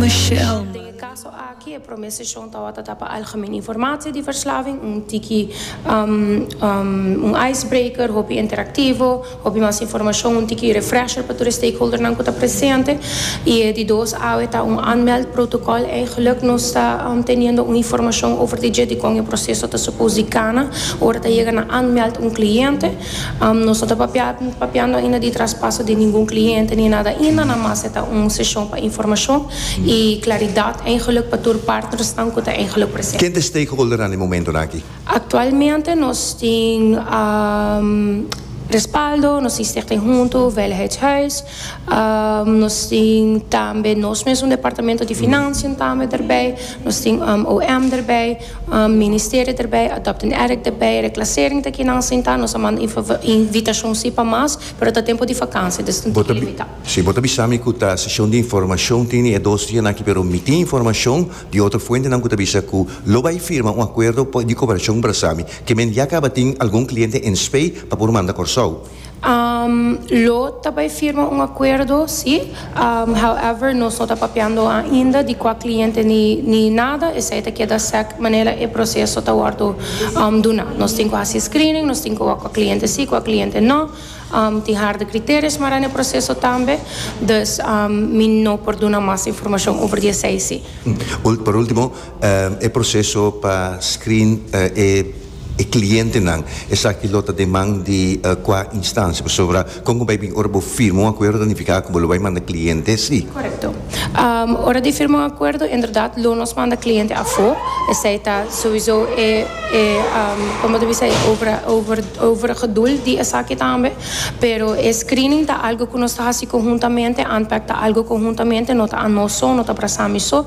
Michelle. Den e kaso aki e prome seshon tawata ta pa algemen informatie di verslaving, un tiki un icebreaker, hopi interaktivo, hopi mas informashon, un tiki refresher pa tur e stakeholdernan ku ta presente. I e di dos awe ta un aanmeld protokòl. Eigenlik nos ta teniendo un informashon over di dje dikon e proseso ta supos di kana ora ta yega na aanmeld un kliente. Nos no ta papiando ainda di traspaso di ningun kliente ni nada ainda, na mas e ta un seshon pa informashon i klaridat eingelik pa tur partnersnan ku ta eingelik presente. Ken ta e stakeholdernan den momentonan aki? Aktualmente nos tin Respaldo, nos tin Stichting Hunto Veiligheidshuis, nos tin tambe nos mesun Departamento di Finansien tambe derbij, nos tin OM derbij. Ministerio derbij, Adopting Addict derbij, Reclassering ta kinan a sinta, nos a manda invitacion si pa mas, pero ta tempo di vakansia, dus ta un tiki limita. Si, bo ta bisa mi cu ta sesion di informacion, tin e dos dia naki, pero mi tin informacion di otro fuentenan cu ta bisa cu lo bay firma un acuerdo di cooperacion brasami, ke men ya caba tin algun cliente en Spey pa por manda Corsou. Lo ta bai firma un akuerdo, si. However, nos no ta papiando ainda di kua kliente ni nada, esei ta keda sèk manera e proseso ta wòrdu duna. Nos tin ku hasi screening, nos tin ku wak kua kliente si, kua kliente no. Tin harde kriterio smará na e proseso tambe, dus mi no por duna mas informashon over di esei, si. Por último. E proseso pa screen e clientenan, esaki lo ta deman di cua instancia? Pasobra con cu bay bin ora bo firma un acuerdo ta nifica cu bo lo bay manda cliente si? Correcto. Ora di firma un acuerdo inderdaad lo nos manda cliente afo, esey ta sowiso e e como bo ta bisa e obra over overige doel di esaki tambe, pero e screening ta algo cu nos ta haci conhuntamente, ANPEC ta algo conhuntamente, no ta anoso, no ta brasami so.